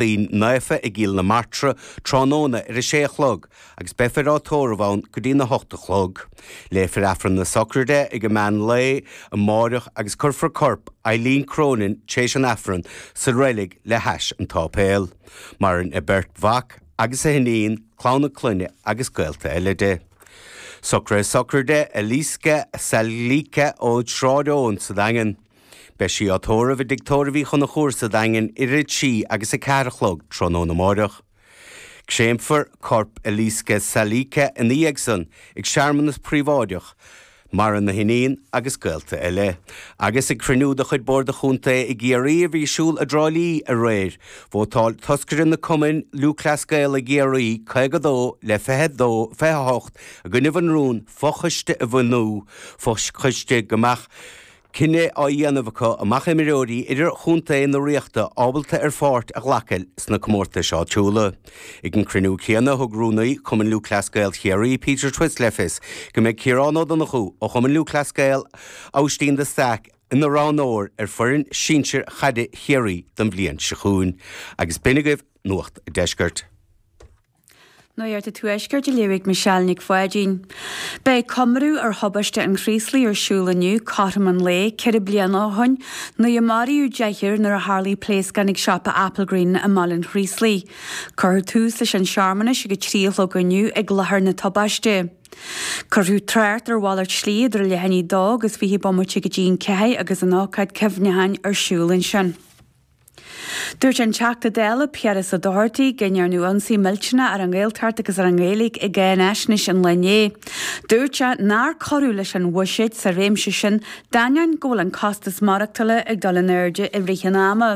Lachtaín Naofa i gCill na Martra tráthnóna ar a sé a chlog agus beifear á tórramh ann go dtí'n a hocht a chlog. Léifear Aifreann na Socraide ag a meán lae amáireach agus cuirfear corp Eileen Cronin tréis an Aifreann sa reilig le hais an tsáipéil. Maireann a beirt mhac agus a hiníon, clann a clainne agus gaolta eile di. Socrú Socraide Eliska Salica ó Sráid Eoin sa Daingean. Beidh sí á tórramh i dTigh Tórraimh Uí Chonchúir sa Daingean idir 3 agus 4 a chlog tráthnóna amáireach. Créamfar corp Eliska Salica ina dhiaidh san ag searmanas príobháideach, maireann a hiníon agus gaolta eile. Agus ag cruinniú de chuid Bord an Chontae i gCiarraí a bhí ar siúl i dTrá Lí aréir, vótáil toscairí na Cumainn Lúthchleas Gael i gCiarraí, 52 le 28 i gcoinnibh an rún fochoiste a bhunú, fochoiste go mbeadh cinneadh á dhéanamh acu an mbeadh imreoirí idirchontae na Ríochta ábalta ar pháirt a ghlacadh sna comórtais áitiúla. Ag an cruinniú céanna thug rúnaí Chumann Lúthchleas Gael Chiarraí, Peter Twiss le fios go mbeidh Ciarán Ó Donnchú ó Chumann Lúthchleas Gael Aibhistín de Staic ina roghnóir ar foireann sinsir chaide Chiarraí don bhliain seo chugainn. Agus b'in agaibh Nuacht an Deiscirt. Nuacht an Tuaiscirt á léamh ag Michelle Nic Pháidín. Beidh comóradh ar thubaiste an Chraoslaigh ar siúl inniu cothrom an lae ceithre bliana ó shin, nuair a maraíodh deichniúr nuair a tharlaigh pléascán ag siopa Applegreen i mBaile an Chraoslaigh. Cuirfear tús leis an tsearmanas ag a trí a chlog inniu ag láthair na tubaiste. Cuirfear trácht ar mhalairt slí idir leath i ndiaidh a dó agus fiche bomaite go dtí an ceathair agus an ócáid cuimhneacháin ar siúl ansin. Dúirt an Teachta Dála Piaras Ó Dochartaigh go ndearnadh ionsaí millteanach ar an Ghaeltacht agus ar an nGaeilge i gcáinaisnéis an lae inné. Dúirt sé nár cuireadh leis an bhuiséad sa réimse sin d'ainneoin go bhfuil an costas maireachtála ag dul in airde i rith an ama.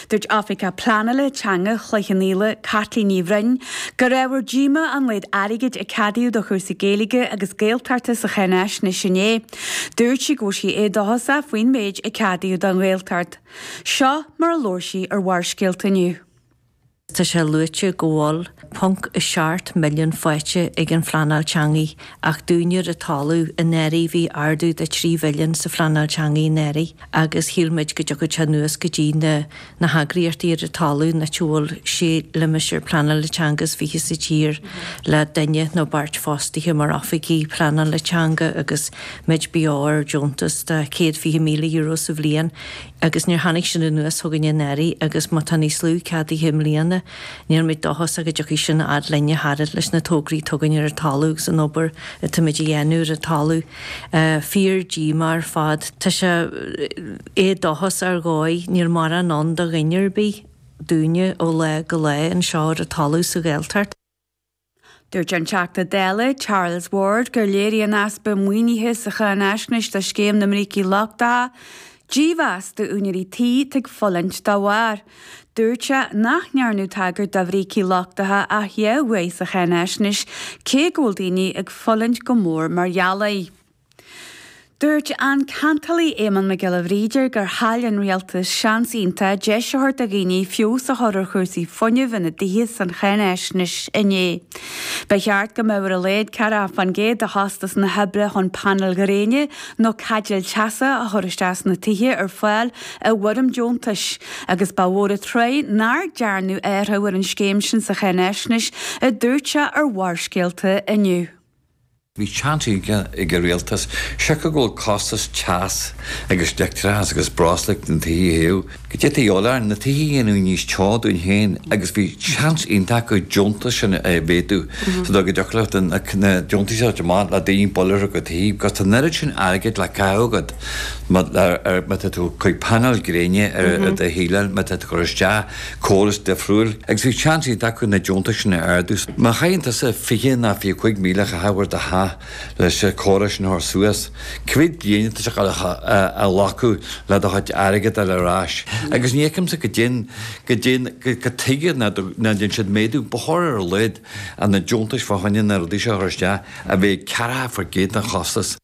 Dúirt Oifigeach Pleanála Teanga Chloich Cheann Fhaola, Caitlín Ní Bhroin, gur ábhar díomá an méad airgid a ceadaíodh do chúrsaí Gaeilge agus Gaeltachta sa cháinaisnéis inné. Dúirt sí go bhfuil sí éadóchasach faoin méid a ceadaíodh don Ghaeltacht. Seo mar a labhair sí ar Bharrscéalta inniu. Tá sé luaite go bhfuil ponc a seacht milliún faighte ag an phleanáil teangaí ach dúinne ar an talamh anuraidh bhí ardú de trí mhilliún sa phleanáil teangaí anuraidh agus shíl muid go dtiocfadh sé anuas go dtí na na heagraíochtaí ar an talamh an áit a bhfuil sé limistéar pleanála teanga is fiche sa tír le duine nó beirt fostaithe mar oifigigh pleanála teanga agus Muid beo ar deontas de chéad fiche míle euro sa bhliain agus níor tháinig sin anuas chugainn i ndáiríre agus má tá níos lú ceadaithe i mbliana níl muid dóchasach go dtiocfaidh sin a fhad linn a thairbhe leis na tograí atá againn ar an talamh agus an obair atá muid a dhéanamh ar an talamh fíor díomá ar fad tá sé é dóchas ar ndóigh níl morán ann do dhuine ar bith dúinne ó lá go lá anseo ar an talamh sa Ghaeltacht. Dúirt an Teachta Dála Charles Ward gur léirigh an easpa maoinithe sa cháinfhaisnéis do Scéim na mBrící Lochtacha dímheas d'úinéirí tí atá ag fulaingt dá bharr. Dúirt sé nach ndearnadh tagairt do bhrící lochtacha ach dhá uair sa cháinfhaisnéis cé go bhfuil daoine ag fulaingt go mór mar gheall air. Dúirt an ceantálaí Éamonn Mac Giolla Bhríde gur chaill an Rialtas seans iontach deis a thabhairt do dhaoine feabhas a chur ar chúrsaí fuinnimh ina dtithe san cháinfhaisnéis inné. Ba cheart go mbeadh ar a laghad 4 fán gcéad de chostas na hoibre chun painéil ghréine nó caidéil teasa a chur isteach sna tithe ar fáil i bhfoirm deontais agus ba mhór an trua nach dtearnadh athruithe ar an scéim sin sa cháinfhaisnéis a dúirt sé ar Bharrscéalta inniu. Bhí chance iontach ag an rialtas, siocair go bhfuil costas teas agus leictreachas agus broslú na tithe a théadh go dtiocfadh leo, na tithe a dhéanamh níos teo dúinn féin agus bhí chance iontach acu an deontas sin a mhéadú so dá go dtiocfadh leo do na na deontais seo a bheith maith le daoine bualadh ar aghaidh because tá an oiread sin airgid le caitheamh agat má tá tú ag cur painéil gréine ar do dhíon má tá tú ag cur isteach Córas difriúil agus bhí seans iontach acu na deontais sin a ardú. Má chaitheann tusa fiche nó fiche a cúig míle a chaitheamh ar do theach leis an gcóras sin a chur suas, cá mhéad bliain atá sé ag gabháil a ghlacadh le do chuid airgid a fháil ar ais? Agus ní fheicimse go dtéann, go dtéann, cad chuige nach ndéan siad méadú ba chóir ar a laghad ar na deontais fá choinne na rudaí seo a chur isteach, a bheith ag ceathracha faoin gcéad den chostas.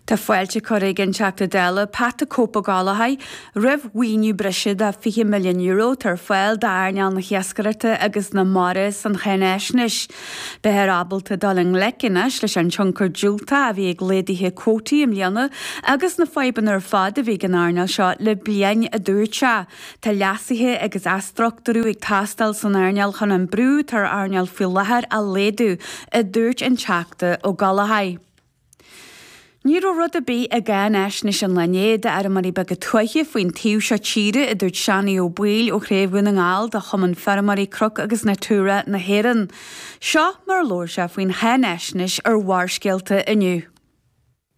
Tá fáilte curtha ag an Teachta Dála Pat 'The Cope' Ó Gallachóigh roimh mhaoiniú breise de €20 milliún atá ar fáil d'earnáil na hiascaireachta agus na mara san cháinfhaisnéis. Beifear ábalta dul i ngleic anois leis an tionchar dhiúltach a bhí ag laghduithe cuótaí i mbliana agus na fadhbanna ar fad a bhí ag an earnáil seo le bliain a dúirt sé. Tá leasuithe agus athstructúrú ag teastáil san earnáil chun an brú atá ar an earnáil faoi láthair a laghdú, a dúirt an Teachta Ó Gallachóir. Ní raibh rud ar bith i gCáinfhaisnéis an lae inné d'fheirmeoirí beaga tuaithe faoin taobh seo tíre, a dúirt Seanie Ó Baoill ó Chraobh Dhún na nGall de Chumann Feirmeoirí Cnoc agus Natura na hÉireann. Seo mar a labhair sé faoin cháinfhaisnéis ar Bharrscéalta inniu.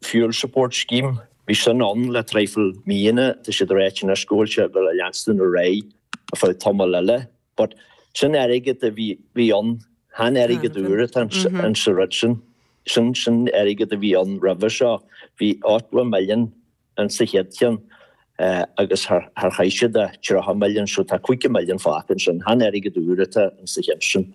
Fuel Support Scheme, bhí sin ann le traidhfil míonna, tá siad ag ráit anois go bhfuil sé ag gabháil a leanstan ar aghaidh ar feadh tamall eile, but sin airgead a bhí, bhí ann, chan airgead úr atá in sa rud sin, sin, sin airgead a bhí ann roimhe seo, bhí eighty million in sa chéad cheann agus thar, thar, chaith siad a, tríocha milliún so tá caoga milliún fágtha ansin, chan airgead úr atá in sa cheann sin.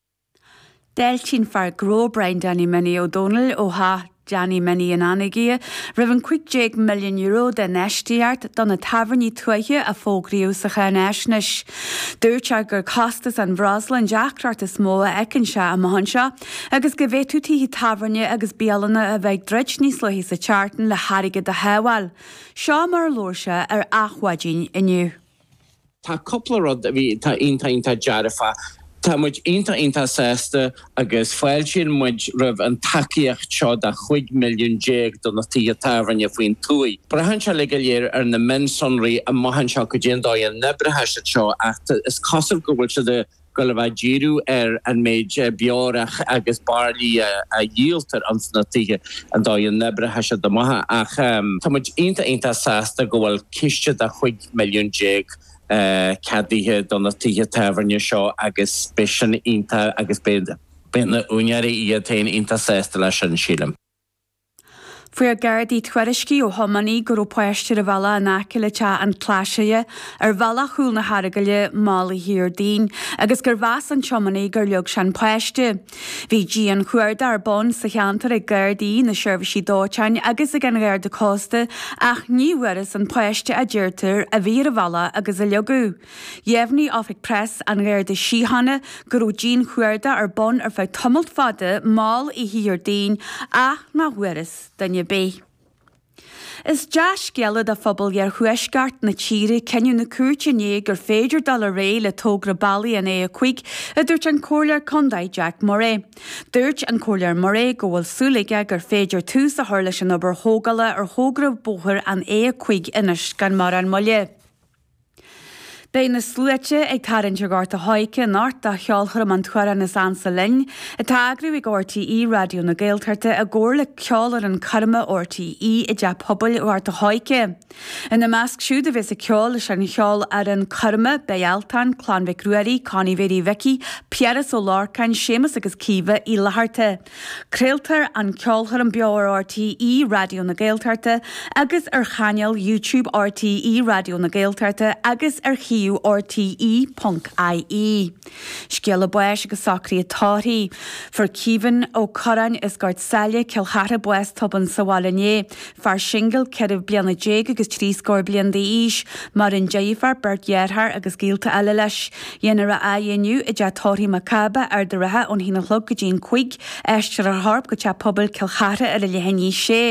D'fháiltigh an fear gnó Brian Danny Minnie Ó Dónaill ó Theach Danny Minnie in Anagaire roimh an €15 milliún d'infheistíocht do na tábhairní tuaithe a fógraíodh sa cháináisneis. Dúirt sé gur costas an bhreosla an deacracht is mó a fheiceann sé amuigh anseo agus go bhféadfadh tithe tábhairne agus bialanna a bheith ag druid níos luaithe sa tseachtain le hairgead a shábháil. Seo mar a labhair sé ar Adhmhaidin inniu. Tá cúpla rud a bhí tá iontach iontach dearfach. Tá muid iontach iontach sásta agus fáiltíonn muid roimh an tacaíocht seo de chúig mhilliún déag do na tithe tábhairne faoin tuaith. Braitheann sé uilig go léir ar na mionsonraí amach anseo goidé an dóigh a n-oibreochaidh sé seo ach is cosúil go bhfuil siad ag gabháil a bheith ag díriú ar an méid beorach agus bairillí a dhíoltar ins na tithe an dóigh a n-oibreochaidh sé amach ach tá muid iontach iontach sásta go bhfuil ciste de chúig milliún déag ceadaithe do na tithe tábhairne seo agus beidh sin iontach agus beidh na, beidh na húinéirí iad féin iontach sásta leis sin sílim. Fuair Gardaí tuairiscí ó thiománaí go raibh páiste ar an bhealach in aice le teach an Chlasaigh ar bhealach chúl na hEaragaile, mall oíche Dhéardaoin, agus gur mheas an tiománaí gur leag sé an páiste. Bhí dianchuardach ar bun sa cheantar ag Gardaí, na Seirbhísí Dóiteáin agus ag an Gharda Cósta ach ní bhfuarthas an páiste a deirtear a bhí ar an bhealach agus a leagadh. Dheimhnigh Oifig Preas an Gharda Síochána go raibh dianchuardach ar bun ar feadh tamalt fada mall oíche Dhéardaoin ach nach bhfuarthas duine ar bith. Is dea-scéala do phobal iarthuaisceart na tíre cinneadh na cúirte inné gur féidir dul ar aghaidh le togra bealaigh an A5, a dúirt an Comhairleoir Condae Jack Murray. Dúirt an Comhairleoir Murray go bhfuil súil aige gur féidir tús a chur leis an obair thógála ar thogra bóthair an A5 anois gan mórán moille. Beidh na sluaite ag tarraingt ar Ghort a' Choirce anocht do cheolchoirm An tAmhrán is Ansa Linn, atá á eagrú ag RTÉ Raidió na Gaeltachta i gcomhar le Ceolfhoireann Coirme RTÉ i dTeach Pobail Ghort a' Choirce. Ina measc siúd a bheas ag ceol leis an Cheolfhoireann Coirme, beidh Altan, Clann Mhic Ruairí, Connie Mhéirí Mhicí, Piaras Ó Lorcáin, Séamus agus Caoimhe Uí Fhlatharta, Craoltar an ceolchoirm beo ar RTÉ Raidió na Gaeltachta agus ar chainéal YouTube RTÉ Raidió na Gaeltachta agus ar shuíomh RTÉ.ie. Scéala báis agus socruithe tórraimh. Fuair Caoimhín Ó Curráin as Gort Saile, Cill Chartha bás tobann sa bhaile inné. fear singil ceithre bliana déag agus trí scór bliain d'aois, maireann deirfiúr, beirt dhearthár agus gaolta eile leis. Dhéanfar a fhaire inniu i dteach tórraimh Mhic Cába, Ard an Rátha ón haon a chlog go dtí an cúig, aistreofar a chorp go teach pobail Cill Chartha ar a leath i ndiaidh a sé.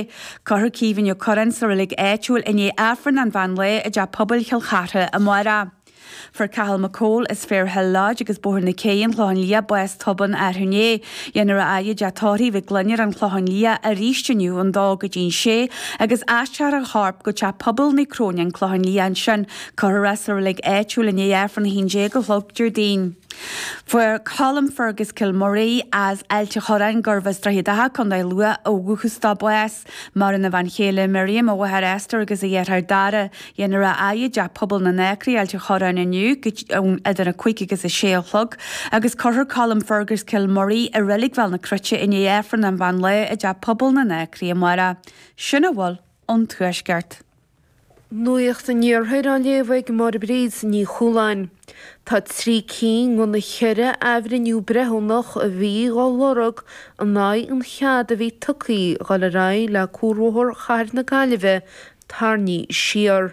Cuirfear Caoimhín Ó Curráin sa reilig áitiúil i ndiaidh Aifreann an mheán lae i dteach pobail Chill Chartha amárach. Fuair Cathal McCole as Fair Hill Lodge agus Bóthar na Cé an Chlochán Liath bás tobann arú inné. Dhéanfar a fhaire i dteach tórraimh Mhig Fhloinn ar an Chlochán Liath arís inniu ón dó go dtí an sé agus aistreofar a chorp go Teach Pobail Naomh Cróine, an Chlochán Liath ansin. Cuirfear é sa reilig áitiúil i ndiaidh Aifreann 11 a chlog Déardaoin. Fuair Colm Fergus Kilmurray as Ailt an Chorráin, gurb as Droichead Átha, Co. Lú ó dhúchas dó bás. Maireann a bhean chéile Miriam, a mháthair Esther agus a dheartháir Dara. Dhéanfar a fhaire i dTeach Pobail na nAcraí, Ailt a' Chorráin inniu idir 5 agus 6 a chlog, agus cuirfear Colm Fergus Kilmurray i Reilig Bhéal na Cruite i ndiaidh Aifreann an Mheán Lae i dTeach Pobail na nAcraí amárach. Sin a bhfuil ón tuaisceart. Nuacht an Iarthair á léamh ag Máire Bríd Ní Chualáin. Tá trí cinn de na ceithre athbhreithniú breithiúnach a bhí dhá lorg in aghaidh an chead a bhí tugtha dul ar aghaidh le cuarbhóthar Chathair na Gaillimhe tarraingthe siar.